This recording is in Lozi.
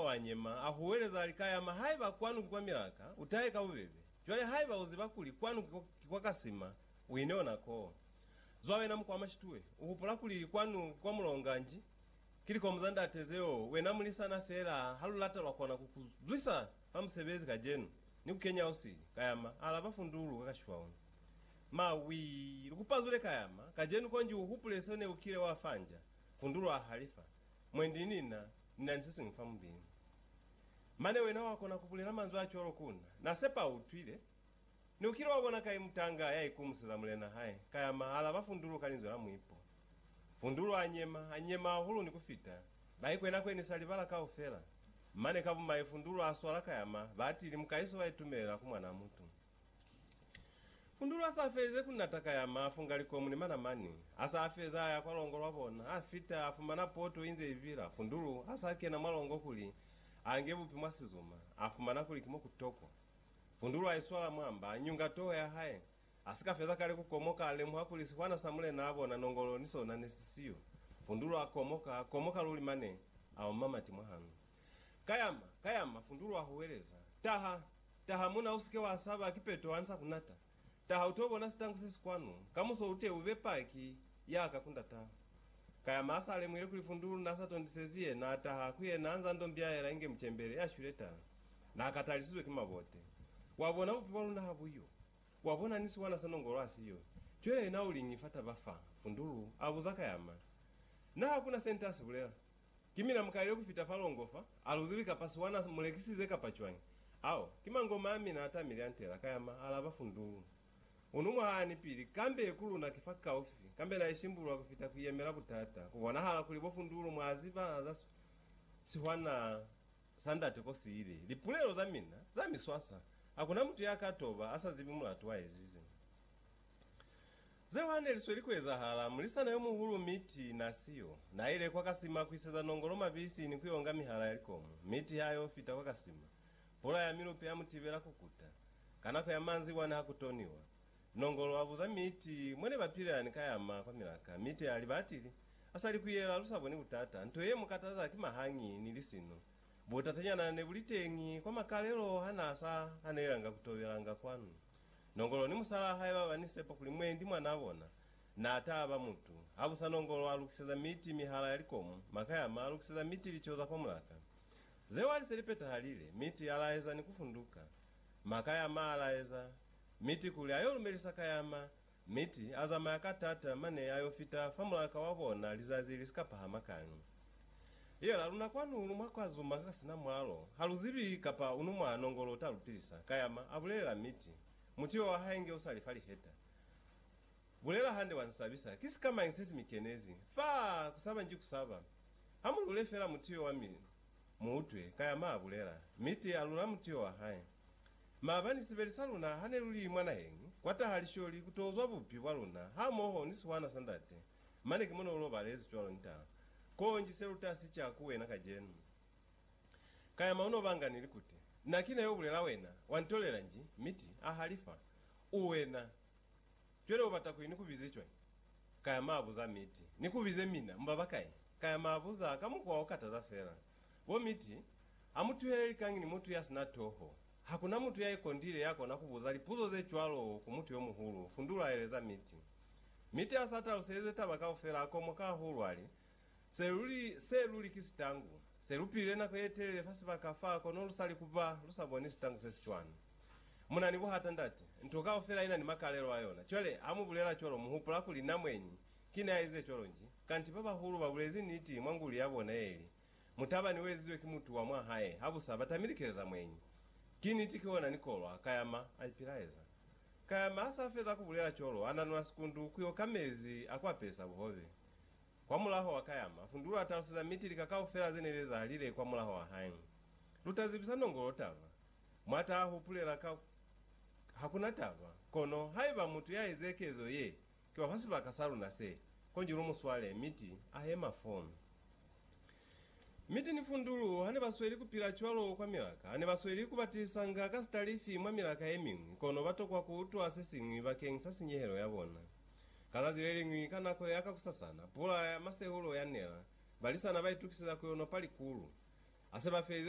Wa nyema, a huweleza, a li, Ka yama, haiba kwanu ki kwa milaka, u tahe ka bubebe. Cwale, haiba u ziba kuli kwanu ki kwa, ki kwa kasima, u ine ona koo. Zwa wena muku wa mashitue. U hupula kuli kwanu ki kwa mulonga nji? Ki likomu za ndate zeo, wena mulisana fela, ha lu lata lwa kona ku ku zwisa fa musebezi kajenu, ni ku kenya usili. Ka yama, a alaba fundulu ka kashiwa ona. Mawii! Lu ku pazule ka yama, kajenu konji u hupule seo ne u kile wa fanja. Fundulu a halifa. Mwendi ni na, ni na ni se siñwi fa mubili. Mane wena wa kona ku bulela manzwi a cwalo ku na. Na sepa u utwile. Ni ukile wa bona kai mutanga ya ikumuseza mulena hae, ka ya ma alaba Fundulu ka linzwi la muipo. Fundulu a nyema, a nyema hahulu ni ku fita, ba ikwena kwe ni sa libala kaufela. Mane ka bumai Fundulu a swala ka ya ma, ba atili, Mukaiso wa itumelela ku Mwanaamutu. Kundulu a sa felize ku nata ka ya mafu nga likomu ni manamani. A sa feza a ya kwa longo lwa bona, a fita, a fumana poto inze ibila. Kundulu a sa kena mwa longo kuli a nge bupi mwa sizuma, a fumana kuli ki mo ku tokwa. Kundulu a iswala mwa mba, a nyunga toho ya hae. A si ka feza kale ku komoka, a lemuha kuli sihwana sa mulena a bona nongolo ni sona ne si siyo. Kundulu a komoka, a komoka luli mane a oma mati mwa hanu. Kayama, kayama, fundulu wa huweleza. Taha! Taha muna, usike wa saba, ki Petro ani sa kunata. Taha uto bona sitangu sesi kwanu, kamuso ute ube paki yaka ku Ndatau. Kayama asa lemuhile kuli fundulu na sa tondisezi ye, na taha ku yena anza ndo mbiaela inge mucembele ya shwile tala. Na katalisizwe ki mabote. Wa bona bupi bwa luna ha buyo. Wa bona ni siwana sa nongolo ha siyo. Cwele yena uliñi fa taba fa? fundulu abuza Kayama. Na hakuna se nte asibulela. Ki mina mukalile kufita fa longo fa, aluzili kapa siwana mulekisize kapa cwañi? Ao ki mangoma a mina atamile antela, kayama, alaba Fundulu. Unu mwahaani pili, kambe ku luna ki fa kaufi, kambe na isimbulula kufita kuiyemela butata. Ku bonahala kuli bo Fundulu mwa ziba za siwana sa ndate ko siile, lipulelo za mina za miswaswa, hakuna mutu ya ka toba asa zibi mulatu wa ezize. Zeo hane li sweli ku ezahala, mulisana yo muhulu Mitty na siyo, na ile kwa kasima ku iseza nongolo mabisi ni ku yo nga mihala ya likomu. Mitty ha yo fita kwa kasima, pula ya milupe ya mu tibela ku kuta. Ka nako ya manzibwa ni ha ku toniwa, nongolo a buza Mitty mwa ne ba pilela ni ka ya ma kwa milaka. Mitty a liba atili, A sa li ku yela, lu sa boni butata. Nto ye mu kataza ki mahangi ni lisino. Butatanyana ne bu li teñi kwa makalelo ha na sa hanelelanga ku tobelanga kwanu. Nongolo ni musalaa hae baba ni sepa kuli mwendi mwanaa bona naa taa ba mutu. Habusa Nongolo a lukiseza miti mihala ya likomu, Makayama a lukiseza miti lico za kwa mulaka. Zeo ali se li petahalile, miti a laeza ni kufunduka. Makayama a laeza miti kuli ayo lumelisa Kayama. Miti a zamaya ka tata mane ayo fita fa mulaka wa bona lizazi li si ka pahama kani. Yela luna kwanu ulu mwa kwa zuma ka sina mwalo, ha lu zibi kapa unu mwa nongolo uta lu pilisa, Kayama, a bulelela Miti. Mutiba wa hae nge usali fa liheta. Bulela hande wa nsabisa. Ki sikamañi se si mi kenezi? Faa! Kusaba nji kusaba. Ha mu lule fela mutiyo wa mi mu utwe, Kayama a bulela. Miti a lula mutiyo wa hae. Maabani sibeli sa luna ha ne lu li mwa naheñi, kwa taha lisholi ku to zwa bupi bwa luna, hamoho ni sihwana sa Ndate. Mane ki mone u lobalezi cwalo nta. Konji se lutasi ca ku wena kacenu. Kayama uno banga ni likuti. Na kina yo bulela wena, wa ntolela nji, miti, a halifa. U wena. Cwale ubata kuli ni ku bize cwañi? Kayama abuza miti. Ni ku bize mina, mu baba kai? Kayama abuza ka mukwa o kataza fela. Bo miti, a mu tuhele likañi ni mutu ya sina toho. Ha ku na mutu ya ikondile ya kona ku buza lipuzo ze cwalo ku mutu yo muhulu. Fundulu a eleza Mitty. Mitty ha s'a taluselizwe taba kaufela, a komoka hahulu, a li, Se luli, se luli ki sitangu. Se lu pilile nako ye telele fa sibaka fa, kono lu sa li ku ba, lu sa boni sitangu se si cwani. Mu na ni buhata, ndate. Nto kaufela i na ni makalelo a yona. Cwale, ha mu bulela cwalo, mu hupula kuli na mweñi ki ne a ize cwalo nji. Kanti ba bahulu ba bulezi niti mwa nguli ya bona ye ili, Mutabani uezizwe ki mutu wa mwa hae habusa batamile keleza mweñi. Ki niti ki ona nikolwa, Kayama aipilaeza. Kayama hasa feza kubulela colo, ananula sikundu kuyo ka mezi a kuapesa buhobe. Kwamulaho wa Kayama, Fundulu ataluseza miti lika kaufela zene lezahalile kwamulaho wa hae. Lutazibisa nongolo taba. Mwata ahupulela ka hakuna taba, kono haiba mutu yaeze kezo ye, Ki wa fa sibaka sa luna se, konji lu mu swale, mi ti a yema fo. Mi ti ni fundulu, ha ne ba sweli ku pila cwalo kwa milaka, ha ne ba sweli ku batisanga ka sitalifi mwa milaka ye miñwi, kono ba tokwa ku utwa se siñwi bakeng sa sinyehelo ya bona. Ka zazi le liñwi, ka nako ya kakusasana, pula ya masehulo ya nela, balisana ba itukiseza ku yo nopa likulu. Ha se ba felize